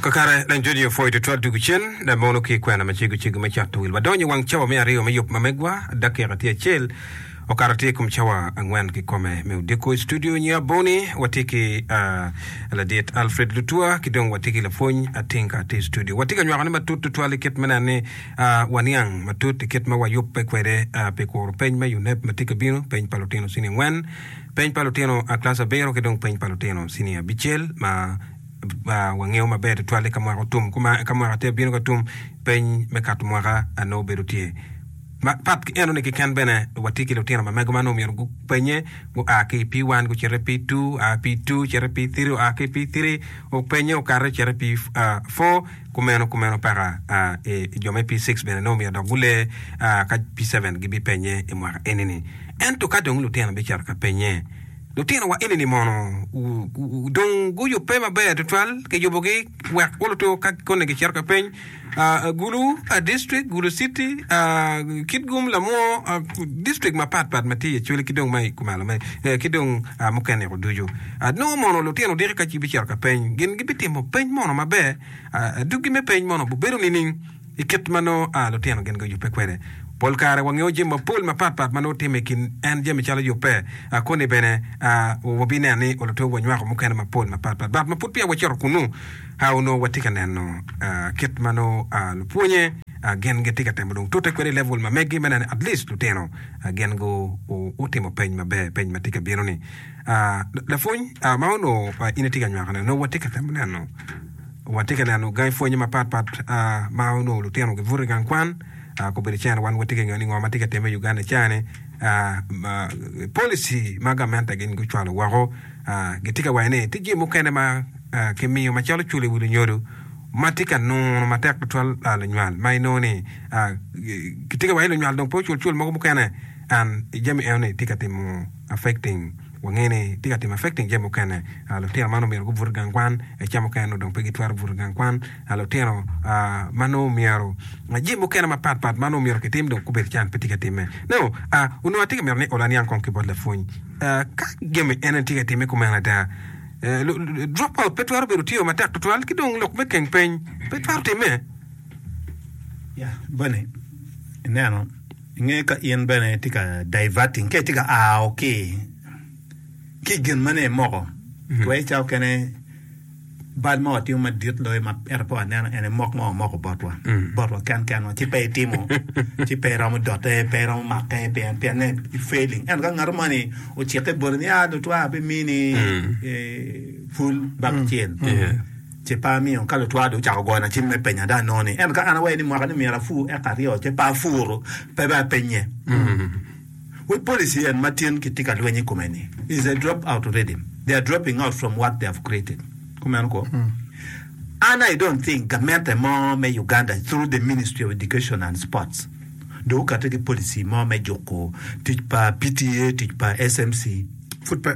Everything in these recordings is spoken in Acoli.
Kakare, leng jodi opwoyo tutwal dwogo cen, dok mono ki i kwena macego cego me cato wil. Wadonyo i wang cawa me aryo me yub ma megwa. Dakika tye acel okato tye i kom cawa angwen kikome. Me odiko i studio nyo aboni, watye ki uh, ladit Alfred Lutua ki dong watye ki lapwony Atinka tye i studio. Watye ka nywakone matut tutwal i kit me neno ni uh, waniang matut i kit ma wayubbe kwede uh, pi kuro peny me UNEB ma tye ka bino, peny pa lutino cini angwen. Peny pa lutino a Kilaci abiro ki dong peny pa lutino cinia abicel ma wangeyo maber tutwal eka mwaka otum kuma eka mwaka tye abino ka tum peny me kato mwaka a nongo bedo tye ma pat ki eno ni keken bene watye ki lutino ma mego ma nongo myero gupenye gua ki i P1 gucito i P2 a P2 cito i P3 oa ki i P3 openye okato cito i P4 Kumeno, kumeno peka a i jo me P-six bene nongo omyero dok gulee a ka P-seven gibipenye i mwaka eni-ni. Ento ka dong lutino bicito ka penye, Lutino wa eni-ni mono dong guyubbe maber tutwal? Kiyubogi wek gulutu ka koni gicito ka peny? a Gulu, a District, Gulu City, a Kitgum, Lamwo, a District mapat pat ma tye i Acholi ki dong ma i Kumalo me, ki dong a mukene-gu ducu. a nongo mono lutino diki ka ci bicito ka peny gin gi bitimo peny mono maber a a duggi me peny mono bubedo nining i kit ma nongo a lutino gin gi oyubbe kwede pol kare wa ngeyo jami ma pol ma pat pat ma nongo time i kin en jami calo yubbe a koni bene a wa bi neno ni olutweyo wa nywako mukene ma pol ma pat pat but ma pud peya wa cito kunu a onongo wa tye ka neno a kit ma nongo a lupwonye a gin gi tye ka temo dong tute kwede i level ma megi me neno ni at least lutino a gin gu u utimo peny maber peny ma tye ka bino ni Lapwony ma onongo in itye ka nywakone nongo watye ka temo neno watye ka neno gangi pwony mapat pat ma onongo lutino gibuto i gang kwan kobedo cene wan watye ka ngeyo ni ngo ma tye ka timme i Uganda i cani policy ma gamente gin gucwalo woko gitye ka waco ni tye jami mukene ma kimiyo macalo culo i wi lunyodo ma tye ka nunu matek tutwal lunywal ma inongo ni kitye ka waco ni lunywal dong pe ocul cul mogo mukene and jami enoni tye ka timo affecting wange ni tye ka timo affecting jami mukene. Ah, lutino man omyero gubut i gang kwan, eh, ca mukene nongo dong pe gitwero buto i gang kwan. Ah, lutino, ah, ma nongo omyero, ah, jami mukene mapat pat ma nongo omyero kitim dong gubedo can pe tye ka timme. No, ah, onongo atye ka mito ni ola niang kong ki bot lapwony. Ah, ka jami eno-ni tye ka timme kumeno ada, eh, lu, lu, drop out pe twero bedo tiyo matek twatwal ki dong lok me keng peny pe twero timme. Ya, Bonnie, ineno? I nge ka in bene itye ka diverting, ka itye ka ao ki ki gin ma ne imoko, twere ca okene bal ma watimo madit loyo ma ento pe waneno ene mok ma wamoko botwa, botwa ken kenwa, ci pe itimo, ci pe iromo dote, pe iromo make pien pien ne i failing. Ento ka ngat mo ni ocikke boti ni ah lutwa abimini eh, pul baka acel, Ce pe amiyo. Ka lutwal dong ocako gona cim me penya dong anongo ni ento ka an awaye ni mwaka ni myero apur eka aryo ce pe apuro, pe dong apenye. Wek policy en ma tin kitye ka lweny i kome ni is a drop out reading. They are dropping out from what they have created. Kumeno kwo. An I don't think gamente mo me Uganda through the Ministry of Education and Sports dong okate ki policy mo me juko tic pa PTA, tic pa SMC. Pud pe.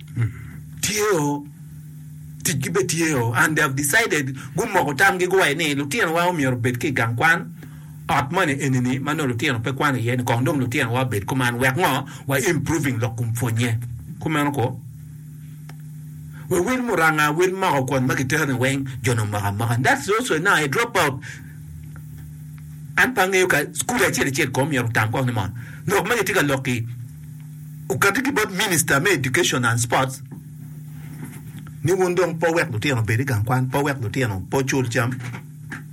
tye o tic gi bene tye o and they have decided gumoko tam gi guwaco ni lutino wa omyero obed ki gang kwan ot moni eni ni manongo lutino pe kwano iye ni kong dong lutino wa obed kuman wek ngo wa improving lok kom pwonye kumeno ko we wil muranga wil moko kwon magi tero ni weng jo ni omoko amoka and that's also now a drop out an pe angeyo ka school acel acel ko myero otam kong ni mo lok magi tye ka lok ki Okati ki bot Minista me Education and Sports ni wun dong pe wek lutino obed i gang kwan, pe wek lutino pe ocul cam.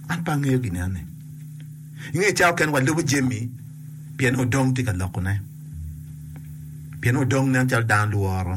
An pe angeyo gin enoni. I nge cawa kene walubo jami pien odong tye ka lokone, pien odong nen calo dano lworo.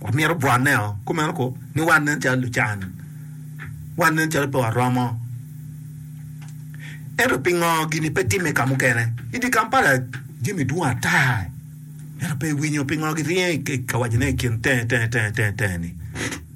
wamito bwoteo kumeno kong ni wan nen calo lucan wan nen calo pe waromo ento pingo gini pe timme ka mukene i dye Kampala jami dwong ata ento pe iwinyo pingo giryeny ka wacone i kin tenge tenge tenge ni.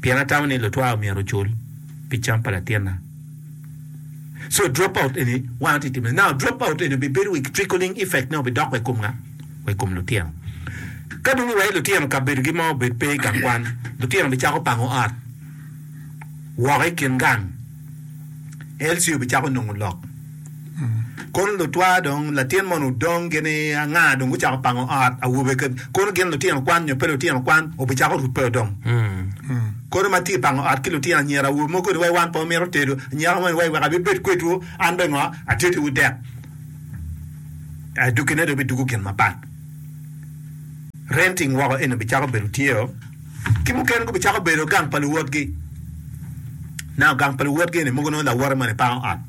pien atamo ni lutwa myero ocul pi cam pa latinna. So drop out eni wan atye timo. Now drop out eni bibedo with trickling effect ne obidok wa i kom nga? Wa i kom lutino. Ka dong iweyo lutino kabedogi ma obed pe i gang kwan, lutino bicako pango ot woko i kin gang. LC obicako nongo lok. Kono lutwaa dong, latin moni odong gini anga dong gucako pango ot awobe kede, kono gin lutino kwan nyo pe lutino kwan obicako rubbe dong. Kono ma tye pango ot ki lutino anyira awobe mogo ni wai wan pe wamito tedo, anyaka moni wai wek abibed kwedwu an bene ngo ateddiwu dek. Eh, duggine dong bidugo gin mapat. Renting woko eni obicako bedo tye o, ki mukene gubicako bedo gang pa luwotgi. Nano gang pa luwotgi eni mogo nongo lawote moni pango ot.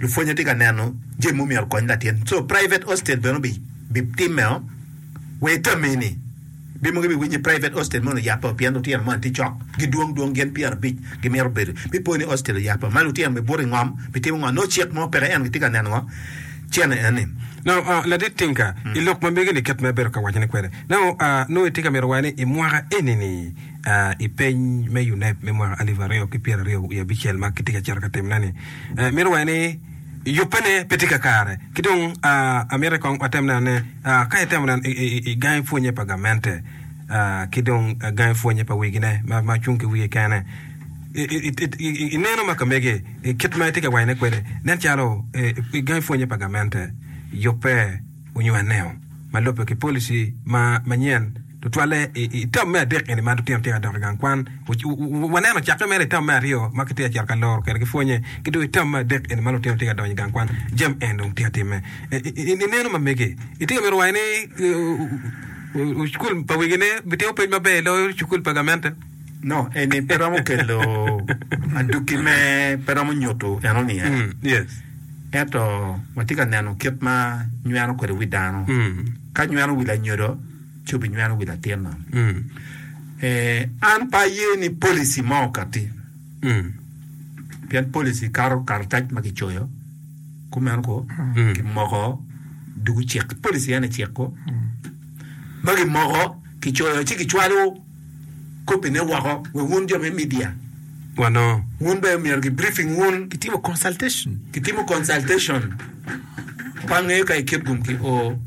Lupwonye tye ka neno jami ma omyero okony latin so private hostel bene obi bi timeo wa itame ni be mogo ibiwiny ni private hostel moni oyapeo pien lutino moni tye cok gidwong dwong gin pyera abic gimito bedo bi po ni hostel oyapeo ma lutino be buto ingom bi timo ngo nongo cik mo peke ento gitye ka neno ngo cene eni. Now uh ladit Tinka ilok ma mege ni kit ma ibedo ka wacone kwede now uh nongo itye ka mito waco ni imwaka eni ni I peny me UNEB me mwaka alip aryo ki pyera aryo wiye abicel ma kitye ka cito ka timone-ni, mito wacce ni yubene pe tye kakare. Ki dong amiti kong watem neno ne ka itemo neno i gangi pwonye pa gamente ki dong gangi pwonye pa wigine ma cung ki wiye kene, ineno ma ka mege kit ma itye ka wacone kwede nen calo gangi pwonye pa gamente yubbe. onywaneo ma lubbe ki policy ma manyen tutwalle i tam me adek eni ma lutino tye ka dok i gang kwan. Waneno cakke mere i tam me aryo ma kitye ka cito ka loro kwede ki pwonye ki dong i tam me adek eni ma lutino tye ka donyo i gang kwan jami eni dong tye ka timme. Ineno ma mege itye ka mito waco ni cukul pa wegine bitimo pwony maber loyo cukul pa gamente? No. Eni pe romo kelo adwogi me pe romo nyuto enoni iye. Yes. Ento watye ka neno kit ma nyweno kwede wi dano. Ka nyweno wi lanyodo, ci obinyweno wi latin man. Eh, an pe aye ni policy mo okatti. Pien policy kato karatac ma kicoyo, kumeno ko, kimoko dugu cik. Policy en aye cik ko ma kimoko, kicoyo ci kicwalo. kopine woko wa wun jo me media wa no wun bene myero ki briefing wun kitimo consultation kitimo consultation bange ka ikit gum ki o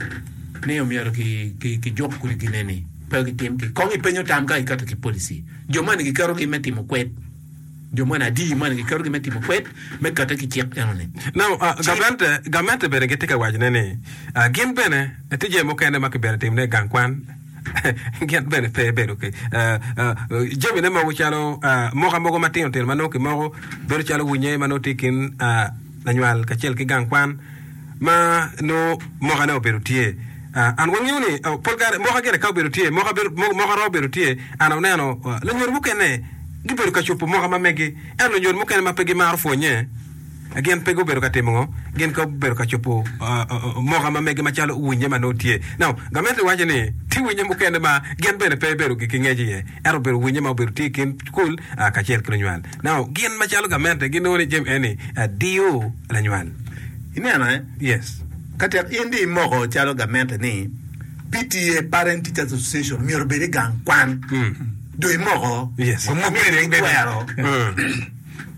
ni omyero ki ki ki juk kudi gine ni pe gitim ki kong ipenyo tam ka iketo ki policy jo mani giketo gi me timo kwed jo mani adi mani giketo gi me timo kwed me kate ki cik eno ni no uh, gamente gamente bene gitye ka wacone ni uh, gin bene tije mukene ma kibedo timone i gang kwan gin bene pe bedo ki jamine mogo calo moka mogo matino tino ma nongo kimoko bedo calo winye ma nongo tye i kin lanywal kacel ki gang kwan ma nongo mokane obedo tye an wangeyo ni pol kare moka gire ka obedo tye moka romo bedo tye an oneno lanywol mukene gibedo ka cupo moka ma megi ento lanywol mukene ma pe gimaro pwonye Gin pe gubedo ka timo ngo? Gin gubedo ka cobo moka ma mege macalo winye ma nongo tye. Now, gamente waco ni tye winye mukene ma gin bene pe bedo gi ngec iye, ento obedo winye ma obedo tye i kin cukul kacel ki lunywal. Now, gin macalo gamente ginongo ni Jami eni diyo lanywal. Ineno eh? Yes. Ka tek in dong imoko calo gamente ni PTA, Parent Teachers Association, myero obed i gang kwan, dong imoko, Yes. Omok kwede, en twero. Mm.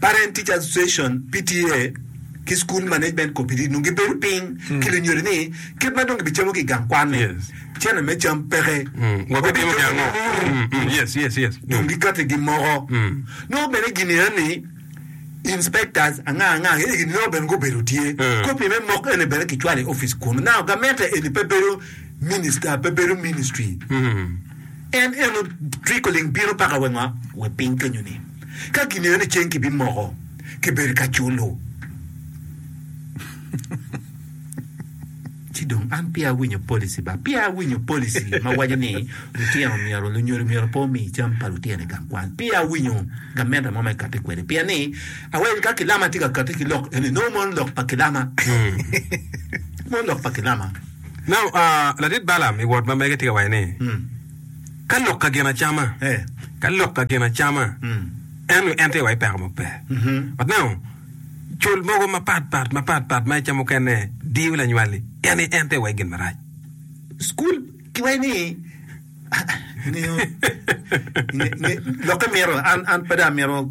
Parent Teacher Association, PTA, ki School Management Committee nongo gibedo piny ki lunyodo ni kit ma dong gibicamo ki i gang kwan-ni, Yes. cene me cam peke. Wa bitimo pi ango? Mm, mm, Yes, yes, yes. Mm. dong gikati gimoko Mm. nongo bene gini en ni inspectors anga anga eni gini nongo bene gubedo tye Mm. kopi me mok eni bene kicwalo i office kun now gamente eni pe bedo minister pe bedo ministry Mm. en eno trickling bino paka wengwa we piny kenyo ni Ka gingeyo ni ceng kibimoko, kibedo ka culo. Ci dong an peya awinyo policy ba peya awinyo policy ma waco ni lutino myero, lunyodo myero pe omi cam pa lutino i gang kwan. Peya awinyo gamente mo ma ekati kwede pien ni aweny ka kilama tye ka kati ki lok eni nongo mono lok pa kilama, mono lok pa kilama. Now, ladit Balaam i wot ma mege tye ka waco ni, Ka lok ka gin acama, ka lok ka gin acama, ento en tye wa i peko mo pe. Watneno col mogo mapat pat mapat pat ma ica mukene diyo lanywali, en ni en tye wa i gin marac. School kiwayo ni ngeyo nge, nge, lokke mito an an pe dong amito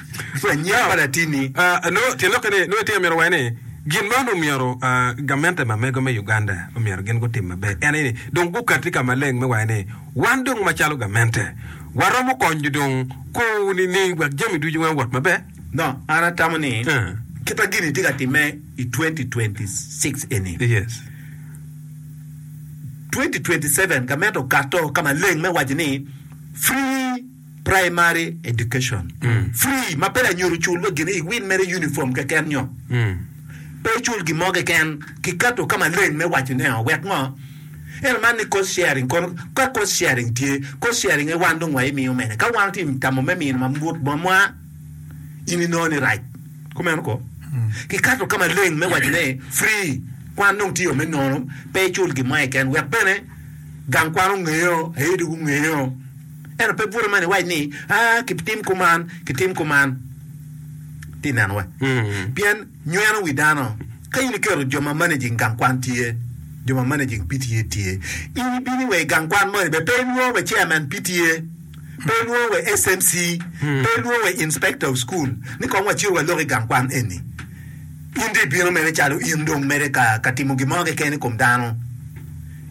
Anya pa latinni nongo tye lokke ni nongo itye ka mito waco ni gin man omyero gamente ma mego me Uganda omyero gin gutim maber en aye ni dong gukati ka maleng me waco ni wan dong macalo gamente waromo konyo dong kor nining wek jami ducu weng owot maber. No an atamo ni kit ma gini tye ka timme i twenty twenty six eni, twenty twenty seven gamente okato ka maleng me waco ni free. primary education free ma pe lanyut ocul wa gin iwin mere uniform keken nyo pe icul gin mo keken kiketo ka maleng me waco ne o wek ngo ento man ni cost sharing kono ka cost sharing tye cost sharing aye wan dong wa imiyo mene ka wan ti tamo me mino mamut bot mwa in inongo ni rac kumeno ko kiketo ka maleng me waco ni free kwan dong tye o me nono pe icul gin mo keken wek bene gang kwan ongeyo aye dong gungeyo Ento pe bute man iwac ni, aa, kitim kuman, kitim kuman. Ti ineno wa? Pien nyweno wi dano. Ka in iketo jo ma managing gang kwan tye, jo ma managing PTA tye, in ibini wa i gang kwan moni bene pe ilwongo wa chairman PTA, pe ilwongo wa SMC, pe ilwongo wa inspector of school ni kong wacito walok i gang kwan eni. In dong ibino mere calo in dong mere ka, ka timo gin mo keken i kom dano.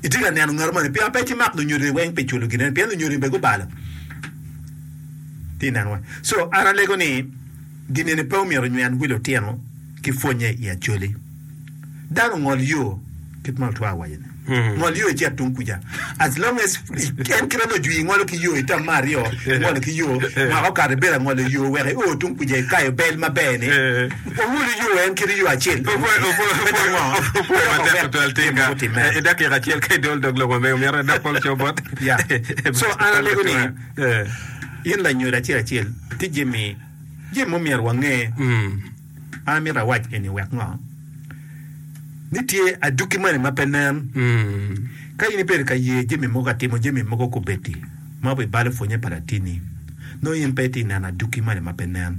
Itye ka neno ngat moni? Pian pe kimak lunyodini weng pi culo ginen pien lunyodini be gubalo. Ti neno weng. So an alego ni ginini pe omyero onywem wi lutino ki pwonye i Acholi. Dano ngol yo kit ma otwar owaco ni. Ngol yo icit tung kuca. As long as en kit ma nongo ojwi ingolo ki yo itam ma aryo ingolo ki yo mwaka okato ibedo angolo yo wek i o tung kuca ikayo bel maber ni. Owulu yo en kit yo acel bene me dongo me doko bene tye ma gutimme. Ya. So an alego ni in lanyodo acel acel tye jami jami ma omyero wange. An amito awac eni wek ngo? Ni tye aduki moni ma pe nen. Ka in ibedo ka ye jami mogo ka timo jami mogo kubedi ma obibalo pwonye pa latini nongo in pe itye neno aduki moni ma pe nen.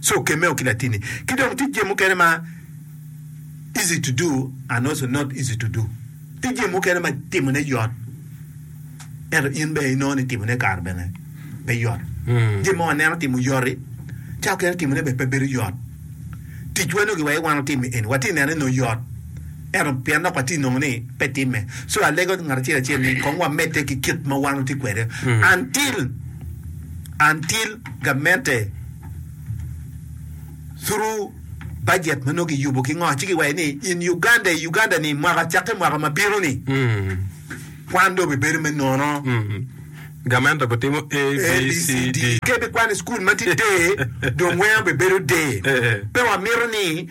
so okemeo ki latini ki dong tic je mukene ma easy to do and also not easy to do tic je mukene ma timo ne yot ento in bene inongo ni timo ne kare bene pe yot mm. je mo waneno timo yoti ca okene timo ne bene pe bedo yot tic wano gi waye wano timo eni wati nene no yot ento pien nok wati nongo ni pe time so alego ngat acel acel ni kong wamete ki kit ma wano ti kwede mm. until until gamente thuru bajet ma nongo kiyubo ki ngo ci giwaco ni in Uganda i Uganda ni mwaka cakke mwaka ma bino ni kwan dong bibedo me nono. Gamente gutimo A, B, C, D. Ke bikwano i cukul ma tye der dong weng bibedo der. Pe wamito ni.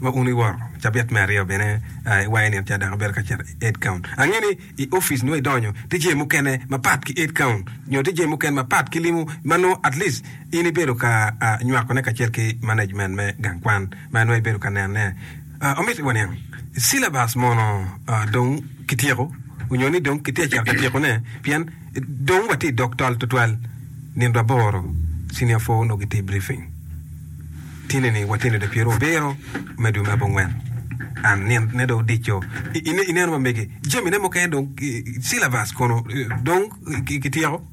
Wa unu i woro cabit me aryo bene, i wai nino ca dok abedo ka cito i Edcount. Angeyo ni i opic nongo idonyo tye jami mukene mapat ki Edcount nyo tye jami mukene mapat ki limo ma nongo at least in ibedo ka nywakone kacel ki management me gang kwan ma nongo ibedo ka nenone. Omyero waniang syllabus mono dong kityeko nyo ni dong kitye ka cito ka tyekone pien dong watye i dog tol tutwal. Nino aboro Senior four nongo gitye i briefing. Tineni watino dong pyero abiro me dwe me abongwen and nino ne dong odico ineno mamege jami ne mukene dong syllabus kono dong kityeko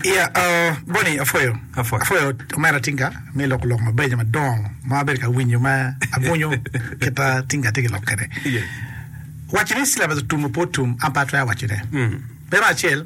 Yeah uh, Bonnie apwoyo Apwoyo. apwoyo omera tinga me loko lok mabeco madongo ma abedo ka winyo ma abwunyo kita tinga tye ki lok kwede. Yeah. Waco ni syllabus otum ope otum an pe atwero wacone. Mm. Bene acel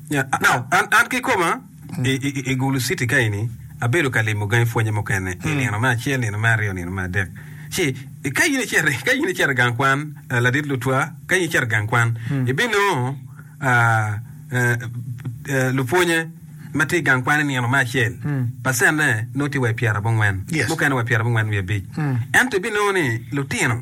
Nya, now, an, an kikoma, i, i, i Gulu City ka eni, abedo ka limo gangi pwonye mukene, i nino me acel, nino me aryo, nino me adek. Ci, i- ka in icito, ka in icito i gang kwan, ah, ladit lutwa, ka in icito i gang kwan, ibinongo, ah, eh, eh, lupwonye ma tye i gang kwan i nino me acel, pacenne nongo tye wa i pyerabongwen, Yes. mukene wa i pyerabongwen wiye abic. Ento ibinongo ni lutino,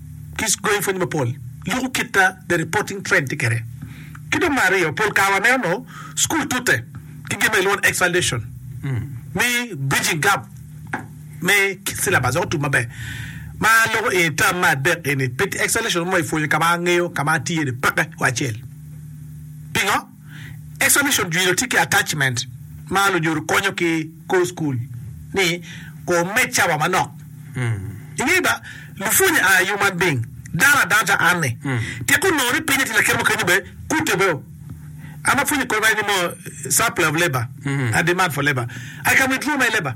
ki gangi pwony mapol, luku kit ma the reporting trend tye kwede. Ki dong me aryo, pol kare waneno onongo cukul tute ki gin ma kilwongo ni X-foundation me bridging gap me kit syllabus wek otum maber. Ma loko eni tam me adek eni pe tye X-foundation mo ipwonyo ka ma angeyo ka ma atye-ni peke wa acel. Pingo? Examination Jwilo tye ki attachment ma lunyodo konyo ki kor cukul ni Kor med cawa manok. Ingeyo ba, lupwonye are human being, dano adanta anne. Tek onongo ni pinye tye lakite mo kenyo be kute be o. An apwonye kor ma en ni mo supply of labour and demand for labour. I can withdraw my labour.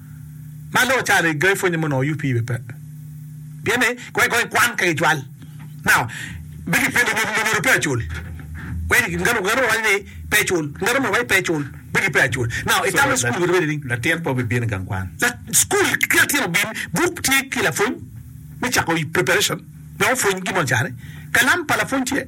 ma loo ca ri ga ipwonye mono UP be pe pien ni kong kong ikwan ka gicwal now be ki pwonye ni lungolo pe acul wek ngat ngat mo waco ni pe cul ngat mo waco pe cul be ki pe acul now i tamo school kodi ni latin pe obibino igang kwan la school ki latin obin buk tye ki lapwony me cako preparation wek opwony gin mo cani kalam pa lapwony tye.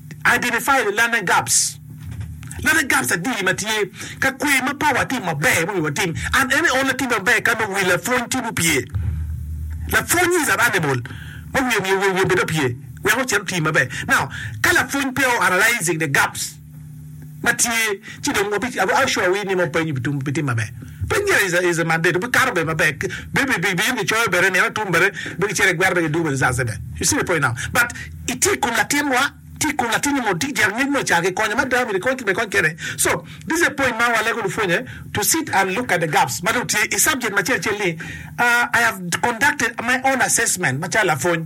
Identify the learning gaps, Learning gaps adi ma tye ka kwer ma peya watimo maber ma owiwa watim? An ene only atimo maber ka nongo wi lapwony tye mupye. Lapwony is an animal ma wiye omiyo wiye bed opye wek ocit oti maber. Now, ka lapwony peya o analyzing the gaps, ma tye ci dong wabi I will sure we ni nongo peny obi tum bitim maber peny gire is is mandate obi kato bene maber bi bi bi in gicoyo bene nino atum bene be gicito I gwer be gidwogo bene caa cde you see the point now but itye ikom latin wa tye ikom latin ni mo tye jek ngec mo caa kikonyo ma dano myero ikony kit ma ikony kede so this is a point ma wa lego lupwonye to sit and look at the gaps ma dong tye I subject macel cel ni I have conducted my own assessment macalo lapwony.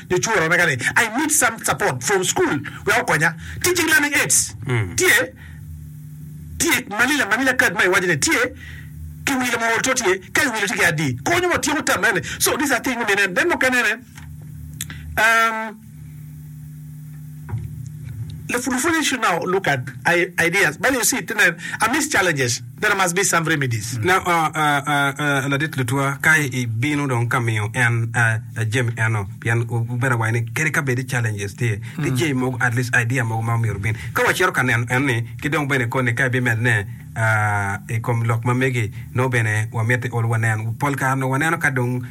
Lucuora omega ni, I need some support from school wek okonya. Teaching learning aids tye tye Manila Manila card ma iwaco ni tye ki wilo ma ol to tye ka iwilo tye ki adi konyo wa tyeko tam ene so these are things me mine then mukene ne um. Lapwony ni should now look at ideas but you see to nen amidst challenges there must be some remedies. Na o ladit lutwa ka i bino dong ka miyo en jami eno pien bedo awayi ni kadi ka bedi challenges tye ki jay mogo at least idea mogo ma omyero bin ka wa cito ka neno en ni ki dong bene koni ka i bi med ne i kom lok ma megi no bene wa miti ol wa nen pol kare no wa neno ka dong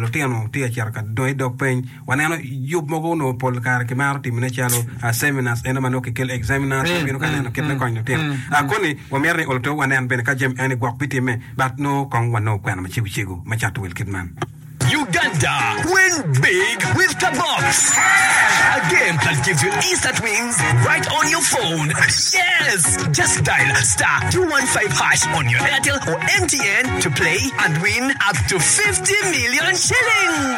lutino tye ka cito ka dongo i dog peny Waneno yub mogo onongo pol kare kimaro timone calo seminars eno ma nongo kikel examiners ma bino ka neno kit me konyo lutino. Koni wamito ni oluto wanen bene ka jami eni gwok bitimme but nongo kong wanongo kwena macego cego me cato wel kit man. Uganda win big with the box a game that gives you instant wins right on your phone yes just dial star 215 hash on your Airtel or MTN to play and win up to 50 million shillings.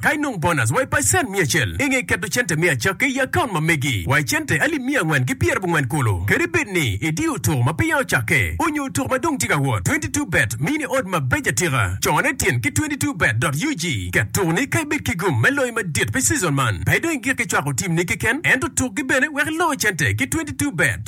Ka inong bonus wa i pacent miya acel i nge keto cente me acakki i akaunt ma megi wa i cente alip miya angwen ki pyera abongwen kulu. Kadi bed ni idiyo otuk ma peya ocakke onyo otuk ma dong tye ka wot, twenty two bet miyi ni odd ma beco atika. Cone tin ki twenty two bet dot ug. Ket tuk ni ka ibed ki gum me loyo madit pi season man, pe idong i gik ki cwako team ni keken ento tuk gi bene wek iloo cente ki twenty two bet.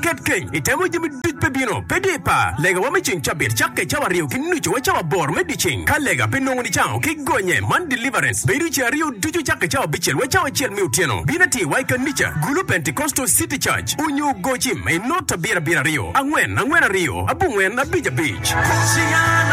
Ket kec, itemo jami duc pe bino, pe dye par. Legawa me ceng cabit cakke cawa aryo ki nucu wa cawa aboro me dyeceng. Ka lega pe nongo nicango ki gonye man deliverance bedo ce aryo ducu cakke cawa abicel wa cawa acel me otyeno. Bin atir wa i kanica gulu Pentecostal city church onyo gocim i not abiro abiro aryo angwen angwen aryo abongwen abic abic.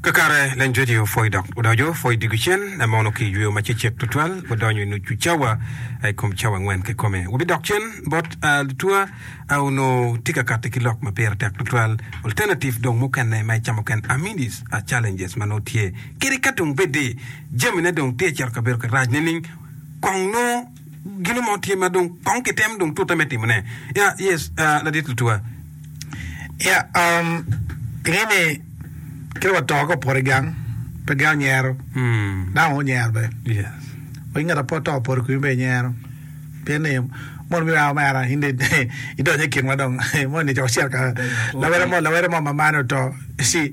Kakare, Lenjwedi opwoyo dok odoco pwo i dye cen. En mono ki i jweo ma cecek tutwal, odonyo i nucu cawa i kom cawa angwen kikome. Wabidok cen bot lutuwa onongo tye ka kati ki lok ma pire tek tutwal, alternative dong mukene ma icamo ken amenities a challenges ma nongo tye kede ka dong bed ni jamine dong tye cito kabedo ki rac nining kong nongo. gino mo tye ma dong kong kitemo dong tute me timone. Ya, yes, uh, ladit Lutua. Ya, um, pinge ni kite wa to ka opoto i gang, pe gang nyero, mm. dano wa onyero be. Yes. Wa ngat apo to opoto kumi be nyero. Pien ni mon mi wa mera in idonyo i kinwa dong mon ni coko cerka lawere mo lawere mo mamane oto. Si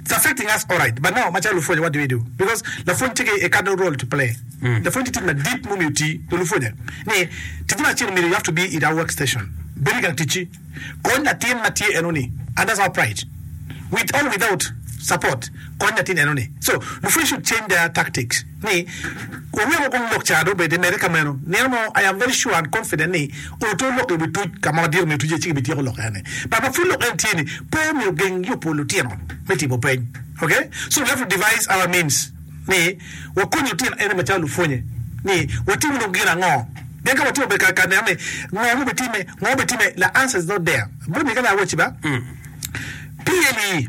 It's affecting us alright but now macalo lupwonya what do we do because lapwony tye ki a cardinal role to play lapwony tye tic madit ma omiyo oti wa lupwonya ni tic ma acel omyero you have to be in our work station bed igang ticci kony latin ma tye eno ni and that's our pride with or without support kony latin eno ni so lupwony should change their tactics. ni wunongo kong lok ca dong bed imede ka meno nino mo I am very sure and confident ni oto lok iwi tuc ka ma wadiro me tuc-ce ci ki bi tyeko lok ene but ma pud lok ene tye ni pe omyero geng yubo lutino me timo peny ok so we have to devise our means ni wakony lutino ene macalo lupwonye ni watimo dong gin ango pien ka watimo bene ka neno ni ngo ma obi time ngo obi time the answer is not there bot ni ka laa awaci ba pye-li.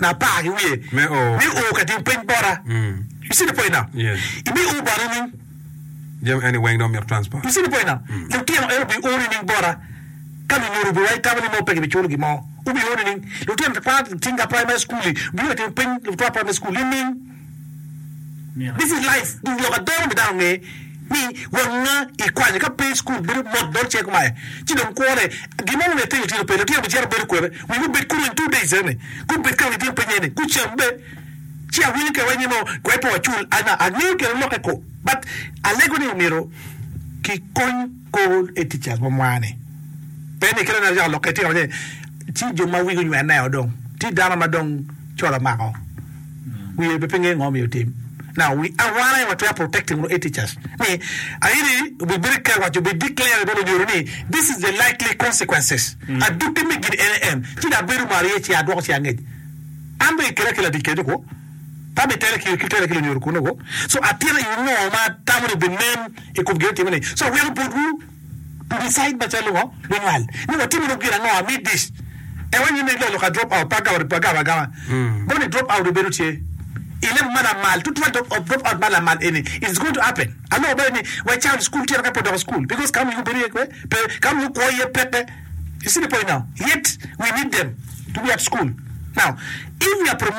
na apar ki wiye me o ka tim pwiny bota. Mm. You see the point now? Yes. Ibi o bota nining? Jami eni weng dong myero transport. You see the point now? Mm. Lutino en obi o nining bota? Ka lunyodo obi wa itamo ni mo pe gibiculo gin mo. Obi o nining? Lutino twat tinga primary school-li, obi ka tim pwiny twat primary school nining? This is life dong lok adero me dano nge ni won nga ikwanyo ka pe school bedo mot dol cek ma ci dong kwo ne gin mo mumiyo itino tino pe lutino be cito bedo kwede wi gubed kulu in two days ene gubed ka nitino piny ene gucam be ci awinyo kene wai nino wai pe wacul angeyo kene loke ko but alego ni omyero ki kony Kor e tic yat mo mwa-ni pe ni kit ma ngat ocako lokke itino ni ci jo ma wigi onywenneo dong tye dano ma dong col omako wiye pe ngeyo ngo myero otim. Now we a wan aye watwero protecting unu e-teachers ni aye obi bedo ki kare obi declare i bwo lunyodo ni this is the likely consequences adwogi me gin ene en ci dong abedo malo iye ci adwoko ci angec an dong ikela ki ladic kenyo kwo pe abitela ki lunyodo kunu kwo so atyena i ngo ma atamo ni binen I kom gin atimo ni so aweko botwu to decide macalo ngo me nwal ni watimo lok gin ango ami dish e wa nyime ilolo ka drop out pa gawari pa gawa agawa boni drop out obedo tye I level ma lamal tutwal drop out drop out ma lamal eni it is going to happen aloko bale ni wa child school tye ka pe odoko school because ka omiyo bedo iye kwe pe ka omiyo kwo iye peke you see the point now yet we need them to be at school now if we are promoting